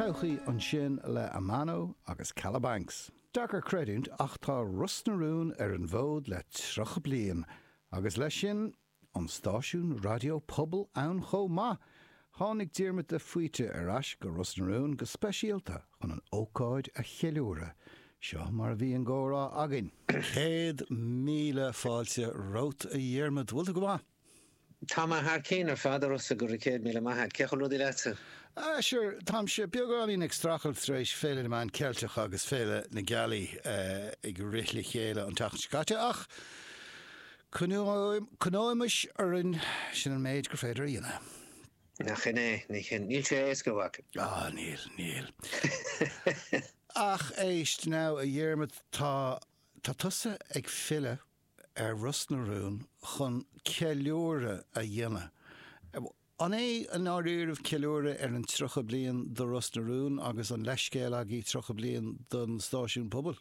Todhchaí ansin le Amano agus Calabanx. Deacair creidiúint ach tá Ros na Rún ar an bhfód le 30 bliain agus leis sin, an stáisiún raidió pobail ann chomh maith! Tháinig Diarmuid de Faoite ar ais go Ros na Rún go speisialta chun an ócáid a cheiliúradh. Seo mar a bhí an comhrá againn. Céad míle fáilte romhat a Dhiarmuid, bhfuil tú go maith? Tá mé thar cinn ar fad, arsa go raibh céad míle maith a't. Cén chaoi bhfuil rudaí leatsa? Á sure, táimse beagáinín ag strachailt tar éis Féile na Meán Ceilteach agus Féile na Gealaí ag rith le chéile an tseachtain seo caite ach coinneoimis orainn, sin an méid gur féidir a dhéanamh. Nach shin é? Ní shin. Níl sé éasca, a mhac. Á, níl, níl. Ach éist, now, a Dhiarmaid, tá tusa ag filleadh. ar Ros na Rún chun ceiliúradh a dhéanamh. An é i ndáiríribh ceiliúradh ar an 30 bliain do Ros na Rún agus an leithscéal agaibh 30 bliain don stáisiún pobail?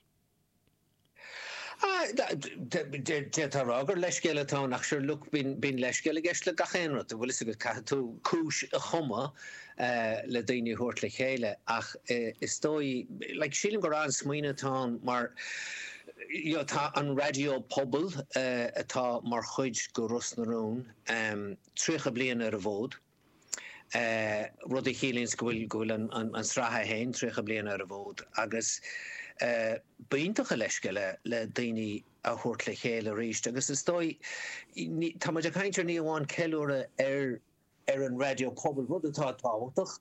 D'fhéadfá a rá gur leithscéal atá ann ach sure look bíonn leithscéal i gceist le gach aon rud, an bhfuil fhios agat, caithfidh tú cúis a chumadh le daoine a thabhairt le chéile ach is dóigh, like sílim gur an-smaoineamh atá ann mar, Tá an raidió pobail, atá mar chuid de Ros na Rún, tríocha bliain ar an bhfód, rud a chiallaíonns go bhfuil an tsraith féin tríocha bliain ar an bhfód agus b'iontach an leithscéal é le daoine a thabhairt le chéile arís agus is dóigh, tá muid ag caint ar ní amháin ceiliúradh ar an raidió pobail, rud atá tábhachtach,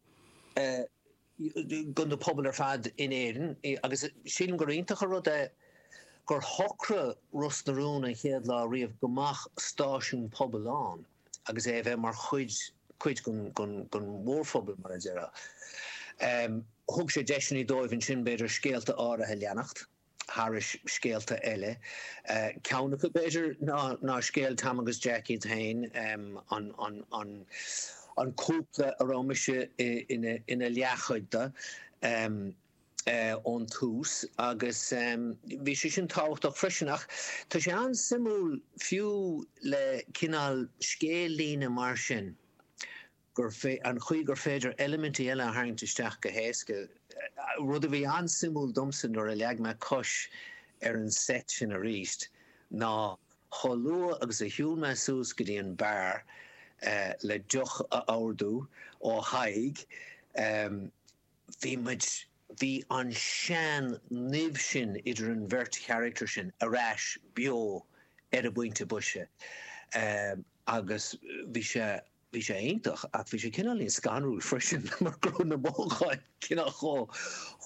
do na pobail ar fad in Éirinn agus sílim gur iontach an rud é gur shocraigh Ros na Rún an chéad lá riamh go mbeadh stáisiún pobail ann agus é a bheith mar chuid cuid den mhórphobal, mar a déarfá. Thug sé deiseanna dóibh ansin, b'fhéidir, scéalta áirithe a leanacht. thairis scéalta eile, ceann acu, b'fhéidir, ná scéal Tom agus Jack iad féin, an cúpla a raibh mise ina leathchuid de ón tús, agus bhí sé sin tábhachtach freisin. Ach tá sé an-suimiúil, fiú le cineál scéal-líne mar sin, gur fé an chaoi gur féidir eilimintí eile a tharraingt isteach go héasca, rud a bhí an-suimiúil domsa nuair a leag mé cois ar an seit sin arís, ná chomh luath agus a shiúil mé suas go dtí an beár le deoch a ordú ó Thadhg, bhí muid, bhí an tsean-nimh sin idir an bheirt charachtar sin ar ais beo ar an bpointe boise agus bhí sé. Bhí sé iontach ach bhí sé cineáilín scanrúil freisin mar go raibh na mothúcháin cineál chomh,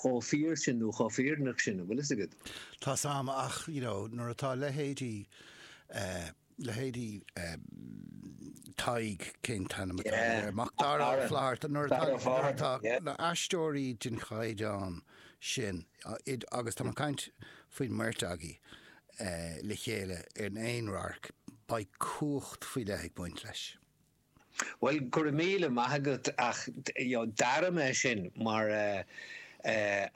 chomh fíor sin nó chomh fírinneach sin, an bhfuil fhios agat. Tá a fhios agam ach, you know, nuair atá leithéidí eh, leithéidí eh, Tadhg, cén t-ainm atá air, Macdara Ó Fátharta, yeah, nuair atá na aisteoirí den chaighdeán sin, agus tá mé ag caint faoin mbeirt agaí, le chéile in aon radharc, beidh cumhacht faoi leith ag baint leis. Bhuel, go raibh míle maith agat ach d'airigh mé sin mar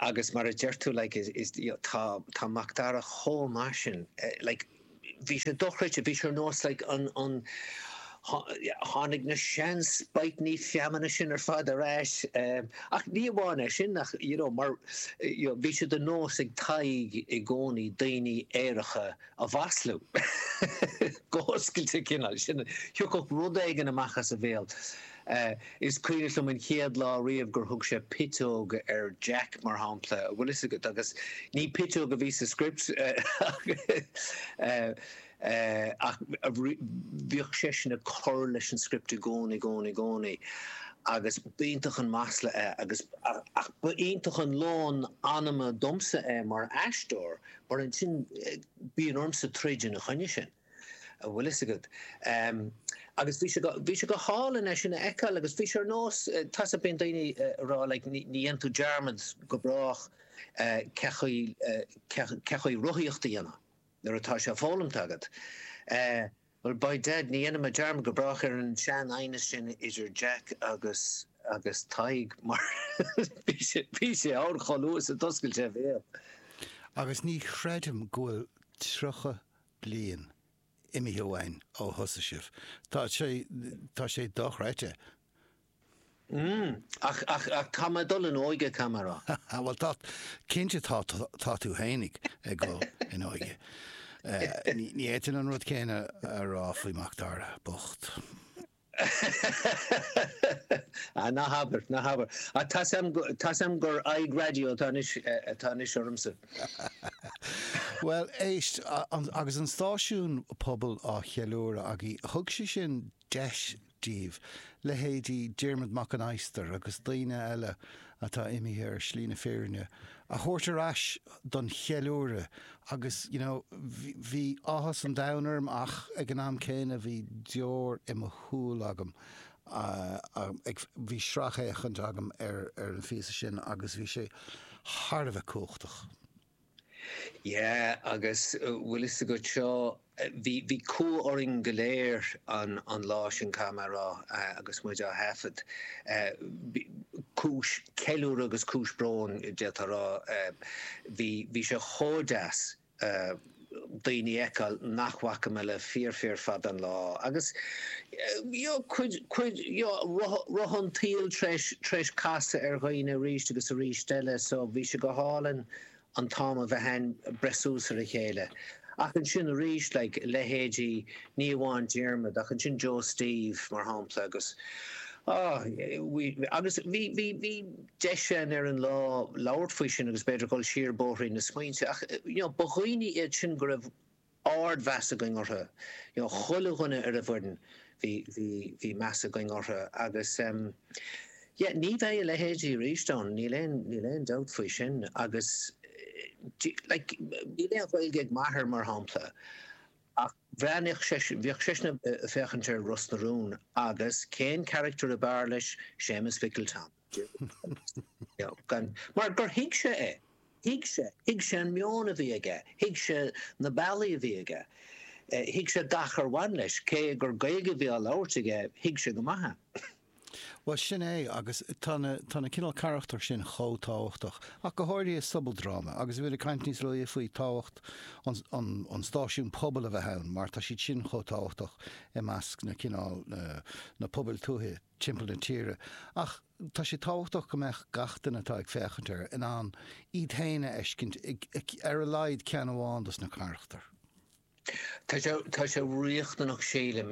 agus mar a deir tú like is tá Macdara chomh maith sin like bhí sé dochreidte, bhí sé ar nós like an, Tháinig na sean-spaidhteanna nimhneacha sin ar fad ar ais, ach ní amháin é sin, ach you know, mar, you know, bhí sé de nós ag Tadhg i gcónaí daoine aeracha a mhaslú, go hoscailte cineál, sin, thiocfadh rud éigin amach as a bhéal. Is cuimhin liom an chéad lá riamh gur thug sé piteog ar Jack, mar shampla, bhfuil fhios agat, agus ní piteog a bhí sa script, ach. ach bhíodh seisean ag cur leis an script i gcónaí, gcónaí, gcónaí agus ba iontach an masla é agus, ach ba iontach an lón anama domsa é mar aisteoir mar ansin bíonn ormsa troid ina choinne sin, an bhfuil fhios agat. Agus bhí sé go, bhí sé go hálainn é sin a fheiceáil agus bhí sé ar nós, tá a fhios agat, bíonn daoine ag rá like ní dhéanann tú dearmad go brách cén chaoi, cén chaoi rothaíocht a dhéanamh. Nuair atá sé foghlamtha agat, eh, well, by Dad, ní dhéanfaidh mé dearmad go brách ar an sean aighneas sin idir Jack agus, agus Tadhg, mar bhí sé, bhí sé ann chomh luath is a d'oscail sé a bhéal. Agus ní chreidim go bhfuil tríocha bliain imithe uainn ó thosaigh sibh. Tá sé, tá sé dochreidte. Ach, ach, ach tá mé ag dul in óige, caithfidh mé rá. Á, bhuel, tá, cinnte, tá, tá tú féin ag dul in óige. Ní fhéadfainn an rud céanna a rá faoi Mhacdara bocht. Á, ná habair, ná habair. Á, tá a fhios agam, tá a fhios agam gur aghaidh raidió atá anois, atá anois ormsa. Bhuel, éist, agus an stáisiún pobail á cheiliúradh againn, thug sé sin deis dóibh, leithéidí Diarmuid Mac an Adhastair agus daoine eile atá imithe ar shlí na fírinne, a thabhairt ar ais don cheiliúradh agus you know bhí áthas an domhain orm ach ag an am céanna bhí deoir i mo shúil agam ag, bhí sracfhéachaint agam ar an bpíosa sin agus bhí sé thar a bheith cumhachtach. Yeah, agus bhfuil fhios agat seo, bhí, bhí cumha orainn go léir an, an lá sin caithfidh mé rá agus muid á thaifead. Cúis ceiliúrtha agus cúis bróin d'fhéadfá rá. Bhí, bhí sé chomh deas. daoine a fheiceáil nach bhfaca mé le fíor fíor fada an lá agus you know rotha an tsaoil tar éis casadh ar dhaoine arís agus arís eile so bhí sé go hálainn an t-am a bheith ann breith suas ar a chéile ach ansin arís like leithéidí ní amháin Diarmaid ach ansin Joe Steve mar shampla agus ah you know we agus bhí bhí bhí deis ann ar an lá labhairt faoi sin agus b'fhéidir dul siar bóithrín na smaointe ach you know ba dhaoine iad sin go raibh ardmheas againn orthu, you know chuile dhuine ar an bhfoireann bhí, bhí, bhí meas againn orthu agus ehm yeah ní bheidh a leithéidí arís ann, níl aon, níl aon dabht faoi sin agus eh like níl aon Ghaeilge ag m'athair mar shampla ach bhreathnaíodh seisean, bhíodh seisean a' féachaint ar Ros na Rún agus cén character ab fhearr leis, Séamus Mhicil Tom. Mar gur thuig sé é. Thuig sé. Thuig sé an meon a bhí aige. Thuig sé na bealaí a bhí aige. Thuig sé gach ar bhain leis. Cé gur Gaeilge a bhí á labhairt aige, thuig sé go maith é. Bhuel, sin é. Agus tá na, tá na cineál carachtar sin chomh tábhachtach, ach go háirithe i sobaldráma. Agus bhíomar ag caint níos luaithe faoi tábhacht an, an, an stáisiún pobail a bheith ann, mar tá siad sin chomh tábhachtach i measc na cineál, na, na pobail tuaithe. timpeall na tíre, ach tá sé tábhachtach go mbeadh gach duine atá ag féachaint air in ann iad féin a fheiscint i ar a laghad ceann amháin dos na carachtair. Tá sé riachtanach sílim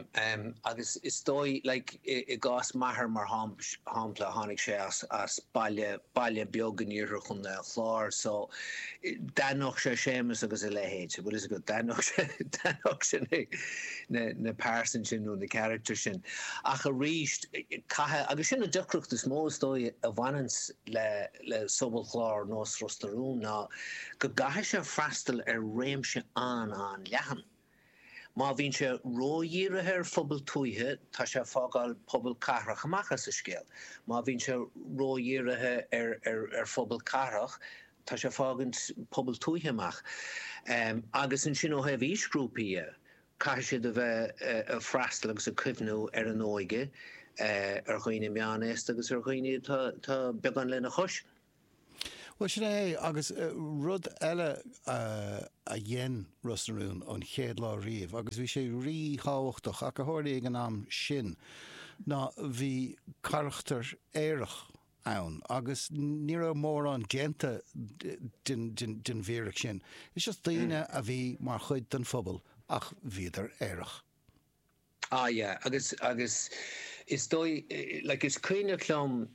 agus is dóigh like i gcás m'athair mar shampla tháinig sé as as baile baile beag in iarthar chontae an Chláir so d'aithneodh sé Séamus agus a leithéid bhfuil fhios agat d'aithneodh sé d'aithneodh sé mé. na pearsan sin nó na carachtar sin. Ach arís, caithfidh, agus sin an deacracht is mó is dóigh a bhaineanns le le sobalchlár nós Ros na Rún ná go gcaithfidh sé freastal ar réimse an-an-leathan. Má bhíonn sé ródhírithe ar phobail tuaithe tá sé ag fágáil pobal cathrach amach as an scéal. Má bhíonn sé ródhírithe ar ar ar phobail cathrach Tá sé ag fágaint pobal tuaithe amach agus ansin ó thaobh aoisghrúpaí dhe, caithfidh siad a bheith ag freastal agus ag cuimhniú ar an óige, ar dhaoine meánaosta agus ar dhaoine atá beagán lena chois. Bhuel, sin é é. Agus rud eile a dhein Ros na Rún an chéad lá riamh, agus bhí sé rí-thábhachtach ach a tharlaigh ag an am sin, ná bhí carachtar aerach ann agus ní raibh mórán déanta den fhíric sin. Just daoine a bhí mar chuid den phobal ach bhíodar aerach. Ah yeah agus agus is dóigh like is cuimhneach liom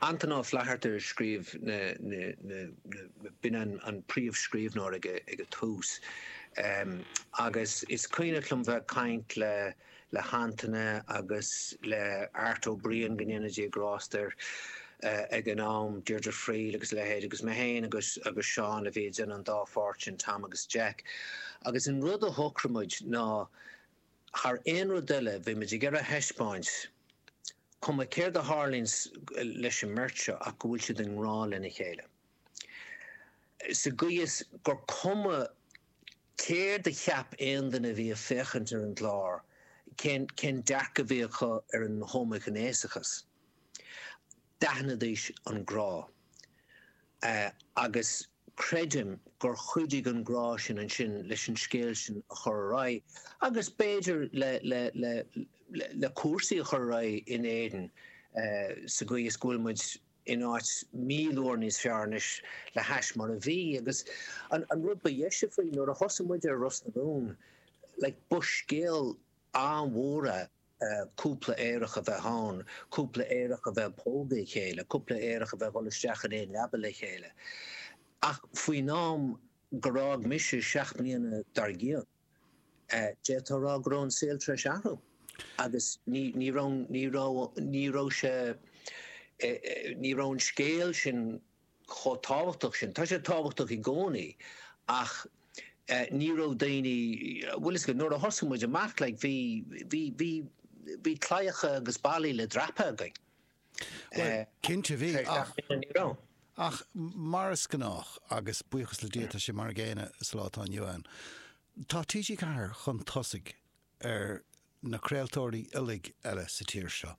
Antaine Ó Flatharta a scríobh na na na na b'in an an príomhscríbhneoir ag ag an tús ehm agus is cuimhneach liom bheith ag caint le le hAntaine agus le Art Ó Briain, go ndéana Dia grásta air, ag an am, Deirdre Friel agus a leithéid, agus mé féin agus Seán a bhí ag déanamh an dá pháirt sin, Tom agus Jack. Agus an rud a shocraigh muid ná, thar aon rud eile, bhí muid ag iarraidh a thaispeáint, cuma céard a tharlaíonn leis an mbeirt seo, ach go bhfuil siad i ngrá lena chéile, sa gcaoi is gur cuma Céard a cheap aon duine a bhí ag féachaint ar an gclár? Cén dearcadh a bhí acu ar an homaighnéasachas? D'aithnidís an grá. Agus creidim gur chuidigh an grá sin ansin leis an scéal sin a chur ar aghaidh agus b'fhéidir le cúrsaí a chur ar aghaidh in Éirinn sa gcaoi is go bhfuil muid in áit míle uair níos fearr anois le hais mar a bhí agus an rud ba dheise faoi nuair a thosaigh muid ar Ros na Rún like ba scéal an-mhór é cúpla aerach a bheith ann, cúpla aerach a bheith ag pógadh a chéile, cúpla aerach a bheith ag dhul isteach in aon leaba le chéile ach faoin am gur fhág mise seacht mbliana dar gcionn. D'fhéadfá a rá go raibh an saol tar éis athrú agus ní raibh sé, ní raibh an scéal sin chomh tábhachtach sin. Tá sé tábhachtach i gcónaí ach ní raibh daoine, bhfuil a fhios agat, nuair a thosaigh muid amach like bhí, bhí, bhí, bhí claíocha agus ballaí le dreapadh againn. Bhuel, cinnte bhí, ach mar is gnách, agus buíochas le Dia tá sé mar an gcéanna sa lá atá inniu ann, tá TG4 chun tosaigh ar na craoltóirí uilig eile sa tír seo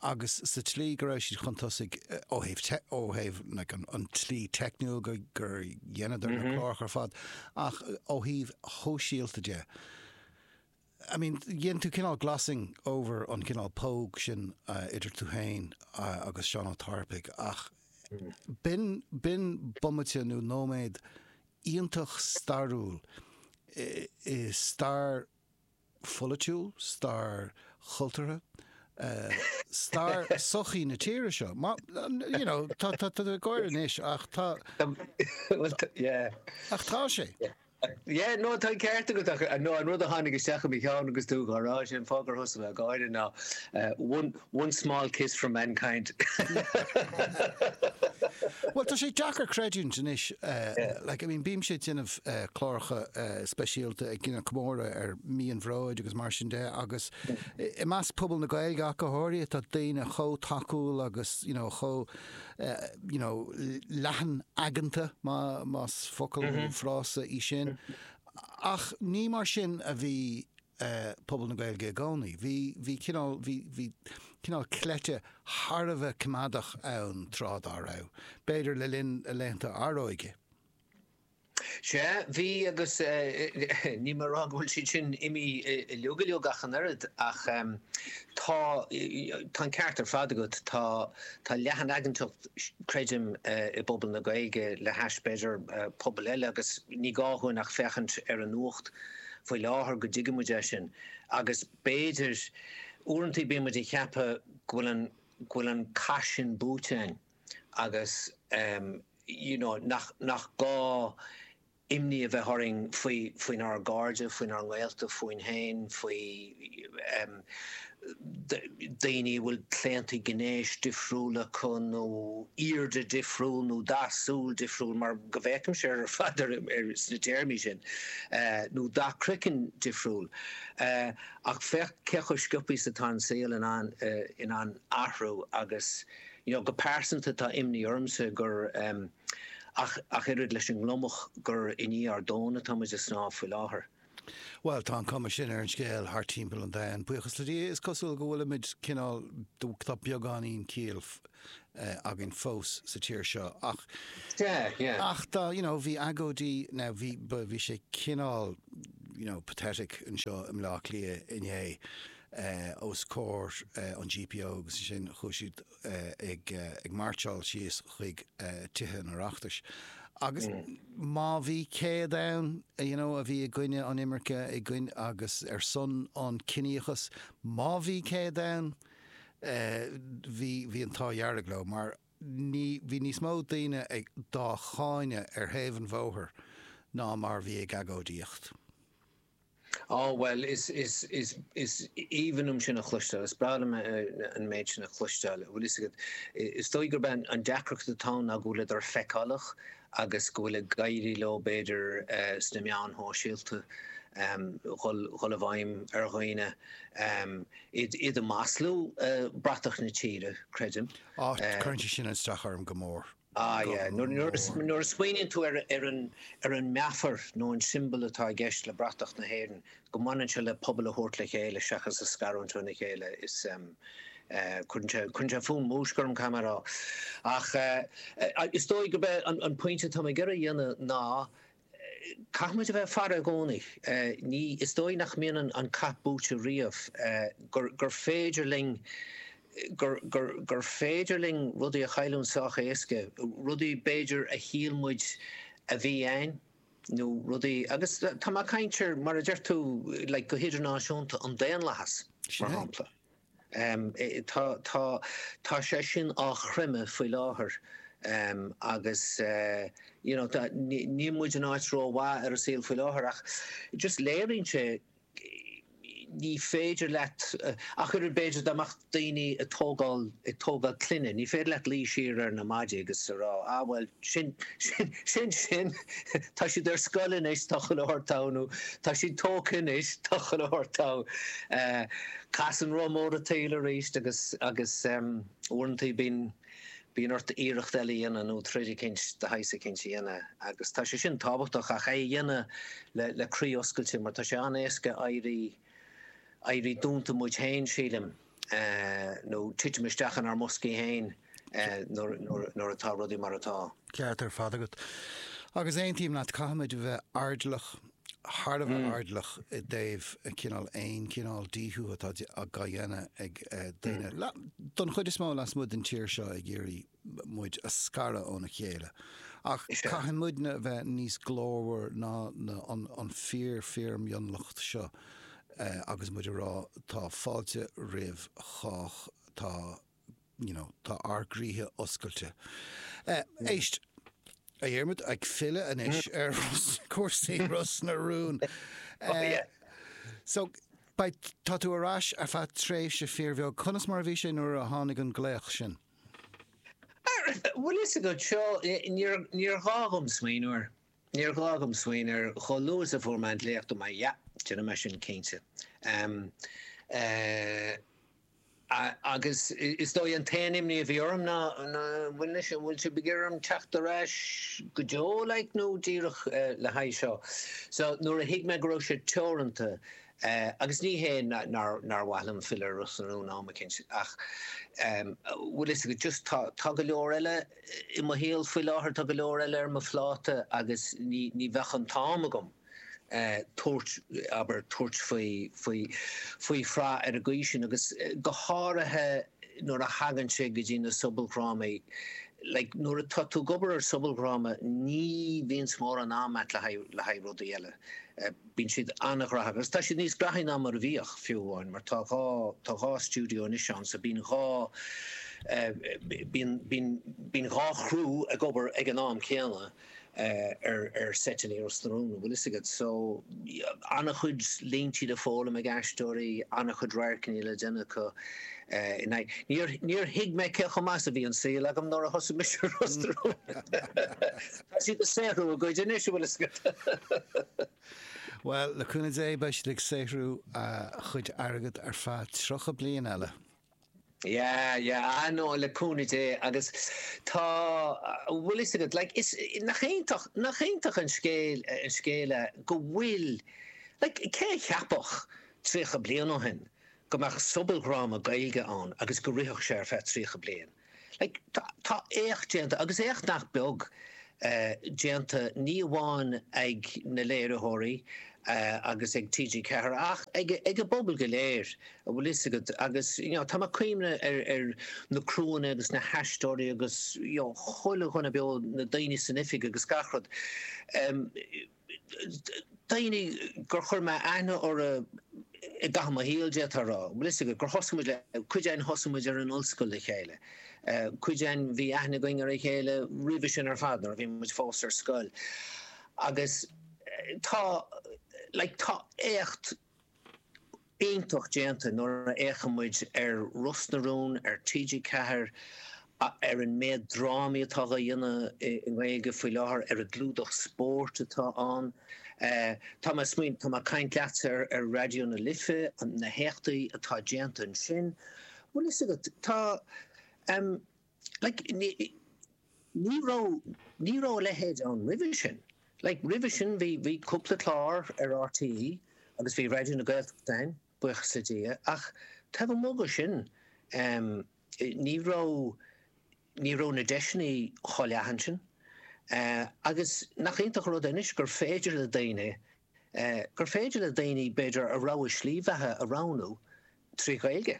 agus sa tslí go raibh siad chun tosaigh ó thaobh, ó thaobh an tslí teicniúil gur dheineadar na cláracha ar fad ach ó thaobh shóisialta de, I mean, dhein tú cineál glossing over an cineál póg sin idir tú féin agus Seán Ó Tarpaigh ach b'in, b'in bomaite nó nóiméad iontach stairiúil i stair pholaitiúil, stair chultúrtha, stair sochaí na tíre seo. You know, tá, tá tú ag gáire anois ach tá... Bhuel, yeah. Ach tá sé. Yeah. Yeah, no, tá an ceart agat ach no, an rud a tháinig isteach i mo cheann agus tú á rá sin fá gur thus a bheith gáire ná one, one small kiss for mankind. Bhuel, tá sé deacair creidiúint anois, like, I mean, bímse ag déanamh cláracha speisialta ag déanamh comóradh ar mí an bhróid agus mar sin de agus i measc pobal na Gaeilge ach go háirithe tá daoine chomh tacúil agus, you know, chomh you know, leathan aigeanta, más focal nó frása í sin, ach ní mar sin a bhí eh, pobal na Gaeilge i gcónaí. Bhí, bhí, cineál, bhí, bhí cineál cleite thar a bheith coimeádach ann tráth dá raibh, b'fhéidir le linn laethanta ár n-óige. Sea, bhí agus níl mé ag rá go bhfuil siad sin imithe uilig uilig ach an oiread ach tá an ceart ar fad agat, tá leathanaigeantacht creidim i bpobal na Gaeilge le hais b'fhéidir pobal eile agus ní gá dhúinn ach féachaint ar an nuacht faoi láthair go dtuigfidh muid é sin agus b'fhéidir uaireantaí bíonn muid ag ceapadh go bhfuil an cath sin buaite againn. agus you know nach nach gá imní a bheith orainn faoi faoinár gcairde, faoinár ngaolta, fúinn féin, faoi em daoine a bhfuil claontaí gnéis difriúla acu nó airde difriúil nó dath súl difriúil mar go bhfeicimse ar fad ar sna téarmaí sin nó dath croicinn difriúil ach féach cé chomh sciobtha is atá an saol in ann in ann athrú agus you know, go pearsanta tá imní ormsa gur, em, ach, ach oiread leis an ngliomach, gur i ndiaidh ár dtóna atá muid ag snámh faoi láthair. Bhuel, tá an cuma sin ar an scéal thart timpeall an domhain. Buíochas le Dia, is cosúil go bhfuilimid cineál, tá beagáinín céille, eh, againn fós sa tír seo ach, Yeah, yeah. ach tá, you know, bhí agóidí, now bhí, ba, bhí sé cineál, you know, pathetic anseo i mBleá Cliath inné, os comhair an GPO agus ansin chuaigh siad ag máirseáil síos chuig Tithe an Oireachtais agus má bhí 100 ann you know a bhí i gcoinne an imirce i gcoinne agus ar son an ciníochas má bhí 100 ann bhí bhí an t-ádh dearg leo mar bhí níos mó daoine dá gcáineadh ar thaobh an bhóthair ná mar bhí ag agóidíocht. Á, bhuel, is, is, is, is aoibhinn liom sin a chloisteáil, is breá liom an méid sin a chloisteáil. Bhuel, is, is dóigh gurb é an deacracht atá ann ná go bhfuileadar feiceálach agus go bhfuil ag éirí leo, b'fhéidir, sna meáin shóisialta, dhul, dhul i bhfeidhm ar dhaoine, iad, iad a mhaslú, bratach na tíre, creidim. Á, cuireann sé sin as dom go mór. Ah yeah, nuair a smaoiníonn tú ar an meafar nó an siombal atá i gceist le bratach na hÉireann, go mbaineann sé le pobal a thabhairt le chéile seachas a scarúint óna chéile, is ehm, eh, cuireann sé fúm, múisc orm caithfidh mé a rá. Ach eh, is dóigh gurb é an pointe atá mé ag iarraidh a dhéanamh ná, Caithfimid a bheith ag faire i gcónaí. Ní, is dóigh nach mbíonn an cath buaite riamh, gur, gur féidir linn, gur, gur, gur féidir linn rudaí a chailliúint sách éasca, rudaí b'fhéidir a shíl muid a bhí a'ainn nó rudaí, agus tá mé ag caint ar, mar a deir tú, like, go hidirnáisiúnta, an daonlathas, mar shampla. Tá sé sin á chreimeadh faoi láthair agus níl muid in áit rómhaith ar an saol faoi láthair ach just léiríonn sé ní féidir leat, ach oiread b'fhéidir dá mbeadh daoine ag tógáil ag tógáil clainne, ní féidir leat ligean siar ar na maidí agus a rá, ah bhuel sin sin sin, tá siad ar scoil anois, tá chuile shórt togha nó tá siad tógtha anois, tá chuile shórt togha. Casann rotha mór an tsaoil arís agus agus uaireantaí bíonn bíonn ort iarracht eile a dhéanamh nó troid eicínt de shaghas eicínt a dhéanamh agus tá sé sin tábhachtach ach é a dhéanamh le le croí oscailte mar tá sé an-éasca éirí éirí dúnta muid féin sílim nó titim isteach inár mboscaí féin. nuair atá rudaí mar atá. ceart ar fad agat. Agus aontaím leat, caithfimid a bheith airdeallach, thar a bheith airdeallach i dtaobh cineál aon chineál díothú atá á dhéanamh ag daoine, don chuid is mó lasmuigh den tír seo, ag iarraidh muid a scaradh óna chéile. Ach caithfidh muidne a bheith níos glórmhar ná an fíor-fhíor-mhionlacht seo agus muid ag rá, tá fáilte roimh chách, tá you know, tá ár gcroíthe oscailte. Eh, éist, a Dhiarmaid, ag filleadh anois ar chúrsaí Ros na Rún, eh, so, beidh, tá tú ar ais ar feadh tréimhse fíor bheag. Conas mar a bhí sé nuair a tháinig an glaoch sin? Bhuel, 'fhios agat, seo, níor, níor ghá dhom smaoineamh air. Níor ghá dhom smaoineamh air chomh luath is a fuair mé an glaoch dúirt mé yeah déanfaidh mé sin cinnte. Agus is dóigh an t-aon imní a bhí orm ná, an bhfuil anois, an bhfuil sibh ag iarraidh orm teacht ar ais go deo, like, nó díreach le haghaidh seo? So, nuair a thuig mé go raibh sé teoranta, agus ní hé nár mhaith liom filleadh ar Ros na Rún am eicínt, ach, bhfuil 'fhios agat, just tá go leor eile, I mo shaol faoi láthair tá go leor eile ar mo phláta agus ní bheadh an t-am agam tabhairt, abair, tabhairt faoi shraith ar an gcaoi sin agus go háirithe nuair a thagann sé go dtí na sobaldhrámaí. Like, nuair atá tú ag obair ar shobaldhráma ní bhíonns mórán am a'at le haghaidh, le haghaidh rudaí eile. Bíonn siad an-ghnóthach agus tá siad níos gnóthaí ná mar a bhíodh, fiú amháin, mar tá dhá, tá dhá stiúideo anois ann so bíonn dhá eh, bíonn, bíonn, bíonn dhá chriú ag obair ag an am céanna eh, ar, ar seiteanna i Ros na Rún, an bhfuil 'fhios agat. So, yeah, an-chuid línte le foghlaim ag na haisteoirí, an-chuid radharcanna le déanamh acu eh, in aghaidh, níor, níor thuig mé cé chomh maith is a bhí an saol agam nuair a thosaigh mise i Ros na Rún. Tá siad ag saothrú a gcuid anois, a bhfuil 'fhios agat. Bhuel, le cúnamh Dé, beidh siad ag saothrú a gcuid airgid ar feadh tríocha bliain eile. Yeah, yeah, ah no, le cúnamh Dé agus tá, a bhfuil 'fhios agat, like, is, nach iontach, nach iontach an scéal, an scéal é go bhfuil, like, cé a cheapfadh tríocha bliain ó shin go mbeadh sobaldhráma Gaeilge ann agus go rithfeadh sé ar feadh tríocha bliain? Tá éacht déanta, agus éacht nach beag déanta, ní amháin ag na léiritheoirí agus ag TG4 ach ag an bpobal go léir, a bhfuil fhios agat, agus tá mé ag cuimhneamh ar na criúanna agus na haisteoirí agus chuile dhuine beo, na daoine san oifig agus gach rud. daoine gur chuir mé aithne orthu i gcaitheamh mo shaoil, d'fhéadfá a rá. Like, is ea, gur thosaigh muid le, cuid againn thosaigh muid ar an ollscoil le chéile, cuid againn bhí aithne againn ar a chéile roimhe sin ar fad nuair a bhí muid fós ar scoil. Agus tá, like, tá éacht. iontach déanta nuair a fhéachann muid ar Ros na Rún ar TG4, ar an méid drámaí atá á dhéanamh i nGaeilge faoi láthair, ar an gclúdach spóirt atá ann. Tá mé ag caint leatsa ar Raidió na Life, na héachtaí atá déanta ansin. Bhfuil fhios agat, tá. Like, ní, ní raibh, ní raibh a leithéid ann roimhe sin. Like, roimhe sin bhí, bhí cúpla clár ar RTÉ agus bhí Raidió na Gaeltachta ann, buíochas le Dia, ach taobh amuigh de sin, em, ní raibh, ní raibh na deiseanna chomh leathan sin. Eh, agus nach iontach an rud é anois gur féidir le daoine, eh, gur féidir le daoine, b'fhéidir, a rogha slí bheatha a roghnú trí Ghaeilge.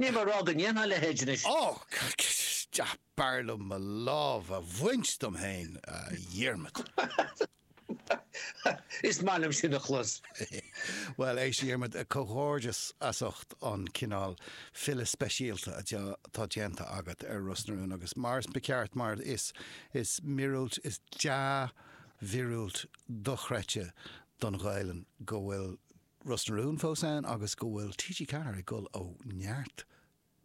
Níl mé ag rá go ndéanfadh a leithéid anois. Ó! Is b'fhearr liom mo lámh a bhaint dom féin, a Dhiarmaid. Is maith liom sin a chlos. Bhuel, éist, a Dhiarmaid, comhghairdeas as ucht an cineál filleadh speisialta atá déanta agat ar Ros na Rún agus, mar is ceart, mar is is míorúilt, is dea-mhíorúilt dochreidte don Ghaelainn go bhfuil Ros na Rún fós ann agus go bhfuil TG4 ag gol ó neart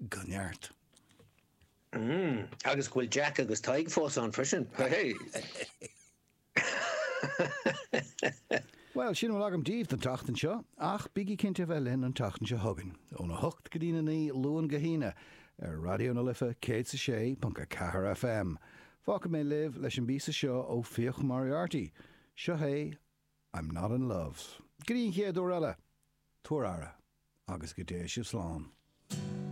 go neart. Mmm, agus go bhfuil Jack agus Tadhg fós ann freisin, hehei! Bhuel, sin a bhfuil agam daoibh don tseachtain seo, ach bígí cinnte a bheith linn an tseachtain seo chugainn, ón 8 go dtí na 9 Luan go hAoine, ar Raidió na Life 106.4 FM. Fágfaidh mé libh leis an bpíosa seo ó Fiach Moriarty, seo é I'm not in love 's go dtí an chéad uair eile, tabhair aire agus go dté sibh slán.